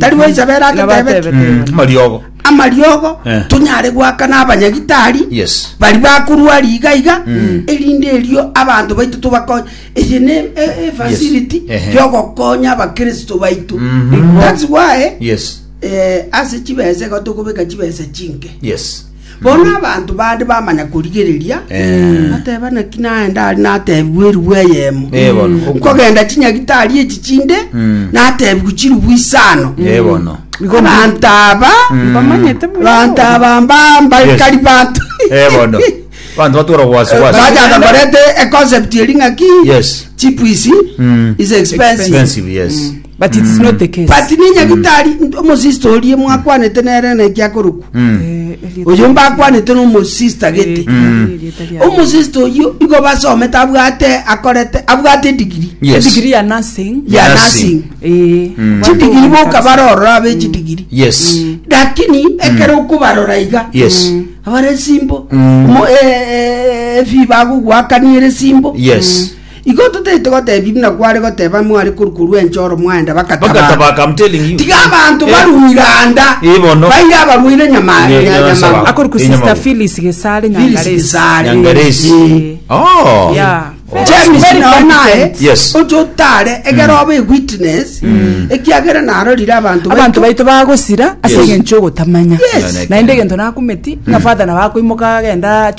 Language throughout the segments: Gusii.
Tari goicha bera Nigo agatebe batebete Mm, Yohana. amariogo amariogo Eh. tonyare goakana abanyagitari yes bari bakorwa riga iga Mm. erinde erio abanto baito tobakonye eye ne e- e- Yes. facility Ehe. yogokonya abakristo baito Mhm. that's why yes eh, ase chibesa iga tokobeka chibesa chinke yes Bono abanto bande bamanya korigereria, Eh. bateba naki naye ndari natebigwe eribu eyemo. Eh, bono. Nkogenda chinyagitari echi chinde, Mm. natebigwe chiribu isano. Eh, bono. Abanto aba, Bamanyete buna abanto bono. aba mba- mbarikari banto. Eh, bono. Bantu batwara gwasi gwasi. Bajaga barete a concept eri ng'aki, Yes. cheap is- Mm. is expensive. Expensive, yes. But it is not the case. but nenyagitari nto- omosista orie mwakwanete nere naki akorokwa Eh, erieta oyo mbakwanete nomosista gete Eh, erieta ria- omosista oyo igo basomete abwate akorete abwate edigiri Yes. Degree ya nursing. ya Nursing. nursing Eh, Mm. watu chidigiri wameka- boka barorora abe chidigiri Yes. lakini ekero okobarora iga Yes. abare simbo Mm. Mo- eh, eh, efi bagogwakaniere simbo Yes. Igo totaete goteebia buna kware goteba mware korwa korwa ense oro mwaenda bagataba. Bagataba, come telling you. Tiga abanto Eh. barue iganda, Eh, bono. baire abarwaire nyama Nya- nya- nyama- nyamago. Akoru ku Inyama Sister bo. Phyllis Gesare Phyllis Nyangaresi. Gesare. Nyangaresi. Eh. Oh. Yeah. James Very nao naye competent. Yes. ocho otare egero obe witness ekiagera narorire abantu abantu baitu bagosira ase Yes. eng'encho ogotamanya Yes. naende egento nakumeti ng'a father nabakoimoka agenda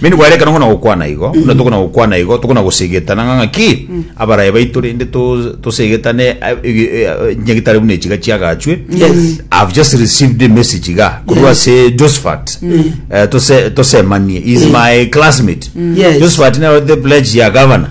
Mende gwarekana ng'o na gokwana igo? Buna tokona gokwana igo, tokona gosegetana ng'a ng'aki abaraia baito rende to- tosegetane a- ege- e- a- nyagitare buna echiga chiagachwe. Yes. I've just received a message iga korwa Yes. ase Josephat. Eh, tose- tosemanie. He is my classmate. Yes. Josephat naro the pledge ya governor.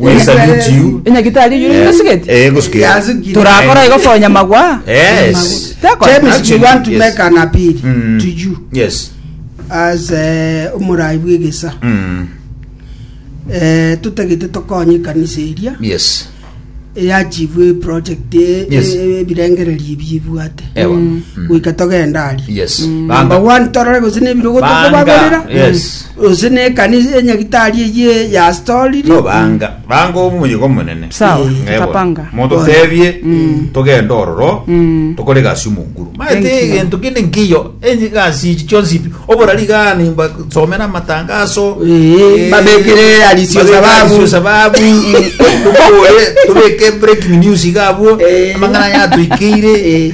Ebisario chiu. Enyagitari eyio Eh, tosigeti. eh, gosigeti. Yasigeti. Torakora igo for nyamagwa. Yes. Teko. James, we Actually, want to yes. make an appeal Mm. to you Yes. as eh, omorai bw'egesa Mm. Eh, totagete tokonye ekanisa eria Yes. eyachivwe project e- Yes. e- ebirengererio ebi ebwate Ewa. Mm. goika togenda aria Yes. number Banga. one torore gose nebirogo Banga. tokobagorera Yes. Gose nekanisa ya nyagitari eyio y'Asitoriri. Tobanga banga omoyega omonene. Sawa, Ng'e bono, tapanga. Mototebie togende ororo tokore egasi y'omonguru. Maete Thank you. egento kende nkeiyo egasi echi chionsi pi. Oborari igaa nimba somera amatangaso. Ee, babekere arisio babekere sababu. arisio sababu. Tokore tobeke breaking news iga abwo. Ee. Amang'ana yatoikeire. Ee.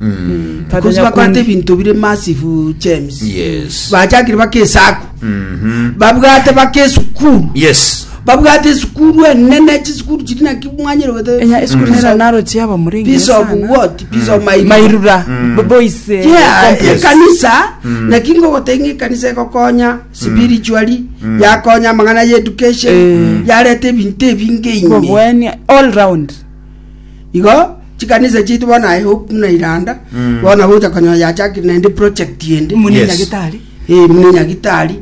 Mm. Tata Because nyakundu. bakwata ebinto bire massive James. Yes. Bachakire baka esaku. Mhm. Babwate baka esukuru. Yes. Babwate esukuru enene chisukuru chiri naki mwanyere wete. enya esukuru Piece nera of- naro chiaba muri Piece of what? Piece of my mairura bo- boise Yeah, complex. ekanisa naki ngogotenga ekanisa ekokonya spiritually yakonya amang'ana ya education yareta ebinto ebinge ime Bobwenia all round igo chikanisa chitu bono aye hope na iranda Mm. bono gocha konyoa yachakire naende project ende mune Yes. nyagitari Eh, mune nyagitari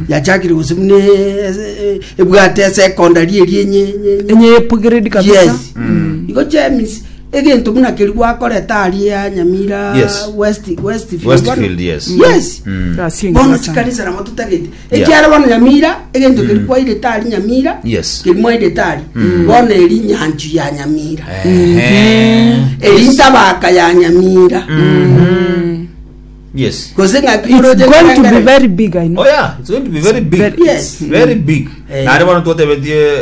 yachakire gose mune eh, ebwate esecondary eri enye enye- enye enye upgrade kabisa yes igo james egento buna keri gwakoreta ari ya nyamira Yes. west westfield Westfield, bono. yes. yes Mm. Gasi engiya bono sana. chikanisa namo tutagete Ekiagera bono Nyamira, egento keria kwairete aria Nyamira, Yes. keria mwairete aria, bono eri nyanchu ya Nyamira, Ehe. eri ntabaka ya Nyamira, Yes. gose ng'a It's going to be kioroche very big, I know. Oh yeah, it's going to be very big. Very- Yes. Very big. Eh. Nare bono twatebetie